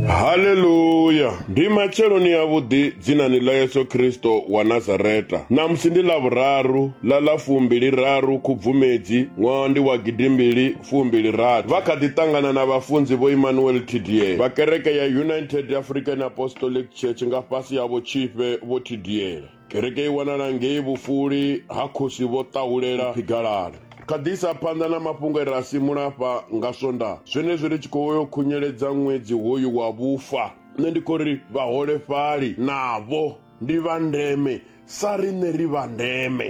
Haleluya! Ndi matsheloni a vhuḓi dzinani ḽa Yesu Kristo wa Nazareta. Ṋamusi ndi ḽa vhuraru ḽa ḽa fumbili raru Khubvumedzi ṅwaha ndi wa gidimbili fumbili rathi. Vha kha ḓi ṱangana na vhafunzi vho Emmanuel Tidie vha kereke ya United African Apostolic Church nga fhasi ha vhotshifhe vho Tidiele. Kereke i wanala ngei vhufuli ha khosi vho ṱahulela phigalala. Kha ḓisa phanḓa na mafhungo e ra simula afha nga swonda zwenezwi ri tshi khou yo khunyeledza ṅwedzi hoyu wa vhufa nṋe ndi khou ri vhaholefhali navho ndi vha ndeme sa riṋe ri vha ndeme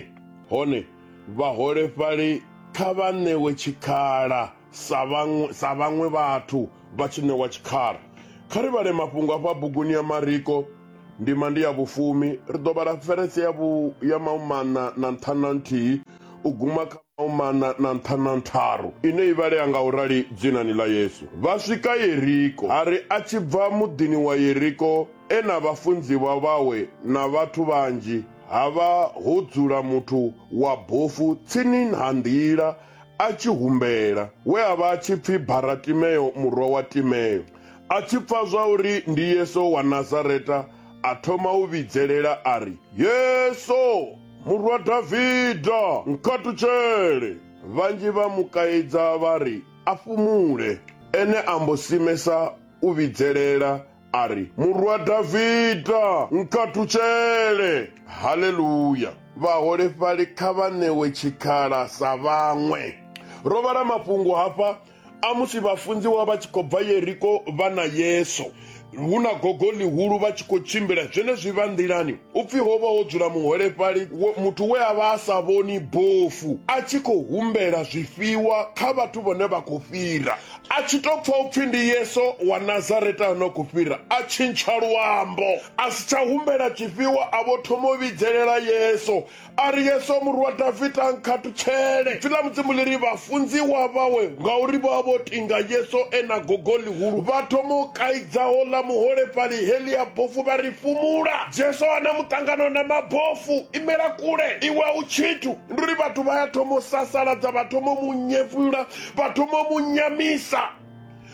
hone vhaholefhali kha vha ṋewe tshikhala Sa vhaṅwe, sa vhaṅwe vhathu vha tshi ṋewa tshikhala, kha ri vhale mafhungo a fha buguni ya Mariko, ndima ndi ya vhufumi. Ri ḓo vhala ferese ya vhu, ya mahumaṋa na nṱhanu na nthihi u guma kha mahumaṋa na nṱhanu na ntharu, ine i vhalea nga u rali, Dzinani ḽa Yesu vha swika Yeriko, a ri a tshi bva muḓini wa Yeriko, e na vhafunziwa vhawe na vhathu vhanzhi, ha vha ho dzula muthu wa bofu tsini ha nḓila, a tshi humbela, we a vha a tshi pfi Baratimeo murwa wa Timeo. A tshi pfa zwa uri ndi Yesu wa Nazareta, a thoma u vhidzelela a ri, Yesu, murwa Davida, nkhatutshele! Vhanzhi vha mu kaidza vha ri a fhumule. Ene a mbo simesa u vhidzelela a ri murwa davida nkhathutshele haleluya vhaholefhali kha vha ṋewe tshikhala sa vhaṅwe ro vhala mafhungo hafha a musi vhafunziwa vha tshi khou bva yeriko vha na yesu hu na gogo ḽihulu vha tshi khou tshimbila zwenezwi vha nḓilani u pfhi ho vha ho dzula muholefhali muthu we a vha a sa vhoni bofu a tshi khou humbela zwifhiwa kha vhathu vhone vha khou fhira A tshi tou pfa upfi ndi Yesu wa Nazareta ano khou fhira, a tshintsha luambo, a si tsha humbela tshifhiwa, a vho thoma u vhidzelela Yesu a ri, Yesu murwa Davida, nkhathutshele. Ipfi ḽa Mudzimu ḽi ri vhafunziwa vhawe, ngauri vha vha vho tinga Yesu e na gogo ḽihulu, vha thoma u kaidza houḽa muholefhali, Heḽia bofu vha ri, Fhumula! Jesu a na muṱangano na mabofu, Imela kule, iwe a u tshithu! Ndi uri vhathu vha ya thoma u sasaladza, vha thoma u mu nyefula. vha thoma mu nyamisa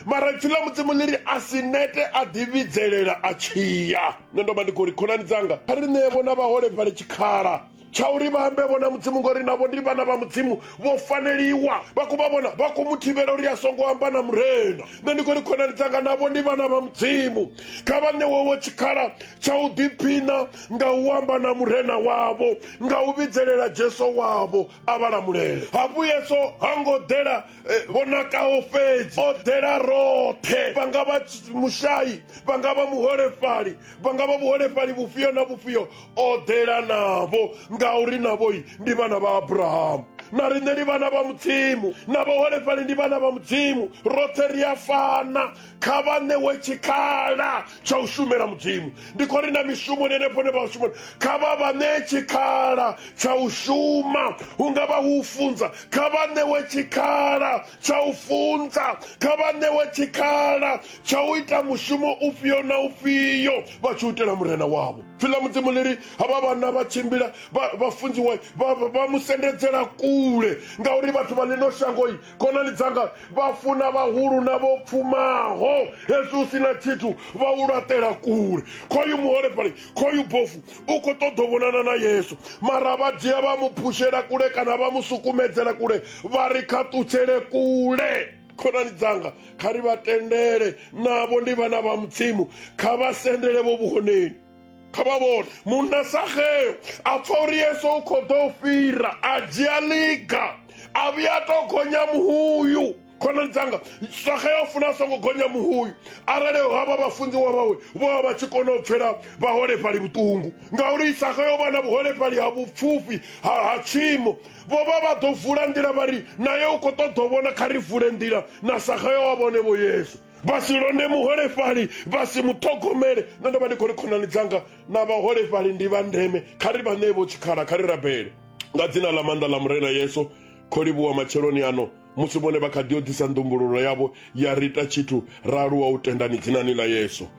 mara ipfi ḽa mudzimu ḽi ri a si nete a ḓivhidzelela a tshiya nṋe ndo vha ndi khou ri khonani dzanga kha ri ṋee vhona vhaholefhali tshikhala tsha uri vha ambe vhona mudzimu ngori navho ndi vhana vha mudzimu vho faneliwa vha khou vha vhona vha khou mu thivhela uri a songo amba na murena nṋe ndi khou ri khonani dzanga navho ndi vhana vha mudzimu kha vha ṋewewo tshikhala tsha u ḓiphina nga u amba na murena wavho nga u vhidzelela jesu wavho a vha lamulele hafhu yesu ha ngo ḓela eh, vhonakaho fhedzi o ḓela roṱhe vha nga vha mushayi vha nga vha muholefhali vha nga vha vhuholefhali vhufhio na vhufhio o ḓela navho ngauri navhoi ndi vhana vha abrahamu na riṋe ndi vhana vha mudzimu na vhaholefhali ndi vhana vha mudzimu roṱhe ri a fana kha vha ṋewe tshikhala tsha u shumela mudzimu ndi khou ri na mishumoni henefho ne vha shumoni kha vha vha ṋee tshikhala tsha u shuma hu nga vha hu funza kha vha ṋewe tshikhala tsha u funza kha vha ṋewe tshikhala tsha u ita mushumo ufhio na ufhio vha tshi u itela murena wavho pfi ḽa mudzimu ḽi ri havha vhana vha tshimbila vha funziwa vha mu sendedzela kule ngauri vhathu vha ḽino shangoi khonani dzanga vha funa vhahulu na vho pfumaho hezwi u sina tshithu vha u laṱela kule khoyu muholefhali khoyu bofu u khou ṱoḓa vhonana na yesu mara vha dzhia vha mu phushela kule kana vha mu sukumedzela kule vha ri kha ṱutshele kule khonani dzanga kha ri vha tendele navho ndi vhana vha mudzimu kha vha sendele vho vhuhoneni kha vha vhone munna sageo a pfa uri yesu u khou ḓo fhira a dzhia liga a vhuya to gonya muhuyu khonani dzanga sageo funa a songo gonya muhuyu arali havha vhafunziwa vhawe vho vha vha tshi kona u pfela vhaholefhali vhuṱungu ngauri sageo vha na vhuholefhali ha vhupfufhi ha tshiimo vho vha vha ḓo vula nḓila vha ri naye u khou ṱoḓa u vhona kha ri vule nḓila na sageo a vhone vho yesu vha si londe muholefhali vha si mu ṱhogomele nṋe ndo vha ndi khou ri khonani dzanga na vhaholefhali ndi vha ndeme kha ri vha ṋee vho tshikhala kha ri rabele nga dzina ḽa maanḓa ḽa murena yesu kho livhuwa matsheloni ano musi vhone vha kha ḓi o ḓisa ndumbululo yavho ya ri ita tshithu ra aluwa u tendani dzinani ḽa yesu